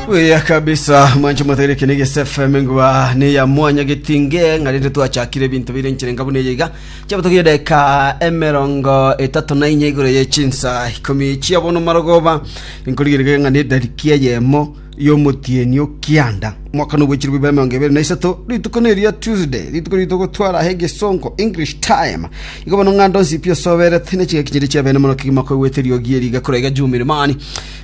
Buya kabisa mwancho mwategere kene gese FM ngwa ne ya mwanya getinge ngarinde twachakire ebintu bire nchire ngabu ne yiga chabatogiye deka emerongo etatu na inye igoro ye chinsa ikomi chia bono marogoba nkorigirige ngane darikia yemo yomotienio kianda mwaka no bwechiri bwa emerongo ebere na isato rituko ne ria Tuesday rituko rito gotwara he gesongo English time Igo bono ng'a ndonsi pi osoberete, ne chigaki chiria chia beene mono kegima koigwete eriogi eri igakora egachumba ime mani.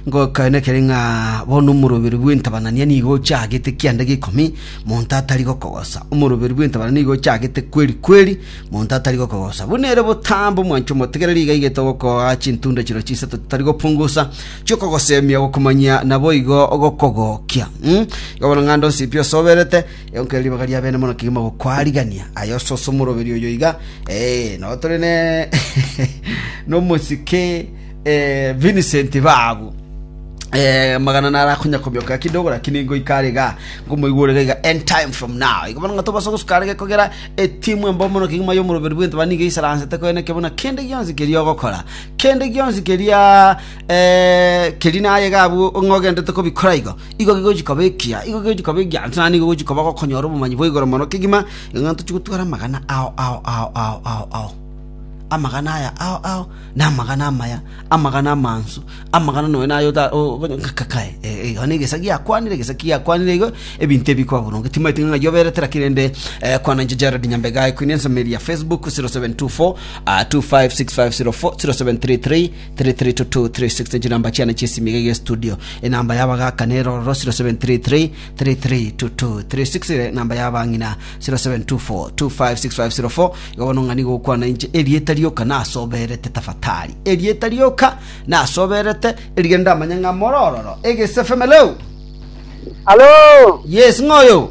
Ngoka nekere ng'a bono omoroberi bw'entabanania nigo ochagete kianda g'ikomi, monto atari gokogosa. Omoroberi bw'entabanania nigo ochagete kweri kweri, monto atari gokogosa. Buna ere botambe omwancho omotegereri iga igete ogokoa chintunda chiro chisato chitari gopungusa, chiokogosemia, gokomanyia, naboigo gokogokia. Igo bono ng'a ndonsi pi osoberete, Eonkerere ribaga ria bene mono kegima gokwarigania. Aye ososo omoroberi oyo iga. Eh, no tore ne nomosike eh, Vincent babu. Eh, magana nara konyakomioka kidogo lakini ngoika are ga ngomoigure ga iga end time from now igo bono ng'ato basa gosuka are gekogera etimu embo mono kegima yo omoroberi bw'ente bani iga isaransete koeneke buna kende gionsi keria ogokora kende gionsi keria Keri naye iga abwo ng'a ogendete kobikora igo, igo gegochia koba ekiya, igo gegochia koba ekiya, ase naende nigo ogochia koba gokonyora obomanyi bwa igoro mono kegima, ng'a tochia gotwara amagana ao ao ao ao ao ao. Amagana aya ao ao namagana amaya, amagana amansu, amagana nonya naye ota o- obo kakae iga na egesa giakwanire egesa kiakwanire igo, ebinto ebi bikoba boronge. Timaeti ng'a ng'ai oberete naki rende kwana inche Jared Nyambega, equine ensemo eri ya Facebook 0724 256504 0733. 33236 echiramba chiane chi'esimiga egie studio enamba y'abagaka nere ororo 0733 332236 ere enamba y'abang'ina 0724256504 igo bono ng'ani gokwana inche erieta rioka nasoberete tafatari erieta rioka nasoberete erige ndamanye ng'a morororo egesefe meleu Halo, yes ng'oyo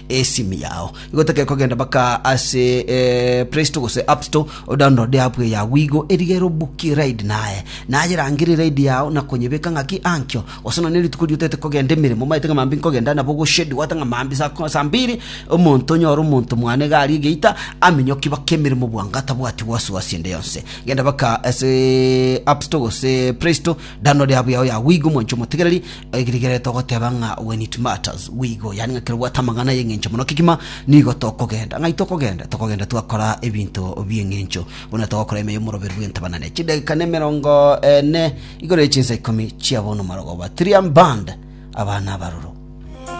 esimu yao. Igo tekeri kogenda baka ase eh, Play Store gose App Store odownload app yao igo erigero buki ride naye naye rangeri ride yao na konyebeka ng'aki ankio gose nonye rituko riotete kogenda emeremo maete ng'a mambi nkogenda nabo goshedi gwate ng'a mambi saa ko- saa mbiri omonto onyore omonto mwane iga aria egeita aminyoki baka emeremo bwango tabwati wasiwasi ende yonse genda baka ase App Store gose Play Store download app yao ya Wigo mwancho motigereri Ekirikire togoteba ng'a when it matters we go, yaani ng'a kerobwate amang'ana ay'engencho mono kegima nigo tokogenda. Ng'ai tokogenda? Tokogenda twakora ebinto bi'engencho, buna togokora ime y'omoroberi bw'entebanane chidageka nemerongo ene igoro ye chinsa ikomi chia bono marogoba, three arm band, abana abaroro.